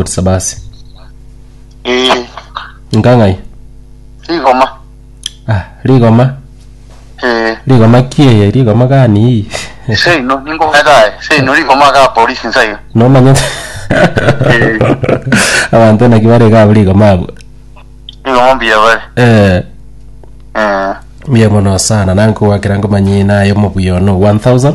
gosaba ase Eh, nkang'ai rigoma. ah rigoma Eh, rigoma kieye rigoma gani hii seino ningometae. Seino rigoma ga polisi nsayo. nomanya Eh. abanto naki bare gabo rigoma abo Rigoma mbuya bare. eh Eh. mbuya mono sana nankogwakera nkomanyie naye omobuya ono 1000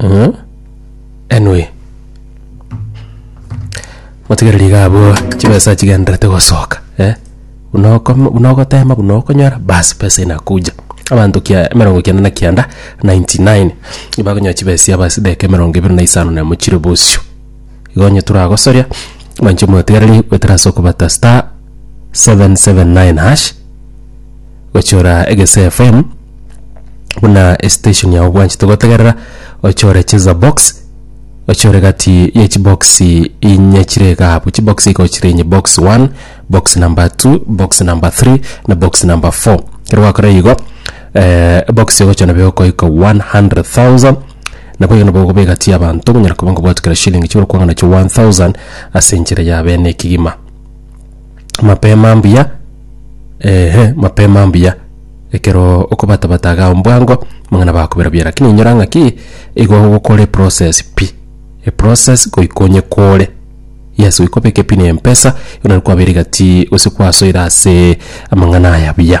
Mm. Anyway. Motigereri iga abwo chibesa chigenderete gosoka eh. Buna okoma buna ogotema buna okonyora bas pesa inakuja. Abanto kia emerongo kianda na kianda 99 nibakonyoa chibesa aba ase edageka emerongo ebere na isano na emo chire bosio. Igo onye toragosoria mwanche motigereri goetera ase okobata star 779 hash. Gochora egese FM buna estation yao bwanchete gotegerera ochore cheza box ochore gati ye chibox inye chire gabu chibox iko chire inye box 1 box number 2 box number 3 na box number 4 kero gwakora igo eh, box yogochora nabe okoika 100,000 nabo igo nabo okoba egati y'abanto monyara koba ngobwate kera shilling chigoro kwang'ana chio 1000 ase enchera ya bene ekigima Mapema mbuya, eeh, mapema mbuya, ekeroo okobatabata igaa mbwango, amang'ana bakobera buya, rakini inyora ng'aki igo ogokora eprocess pi, eprocess goika onye kore, yes goika obeke pi na empesa, ekero naende kwabeire gati gose kwasoire asee amang'ana aya buya.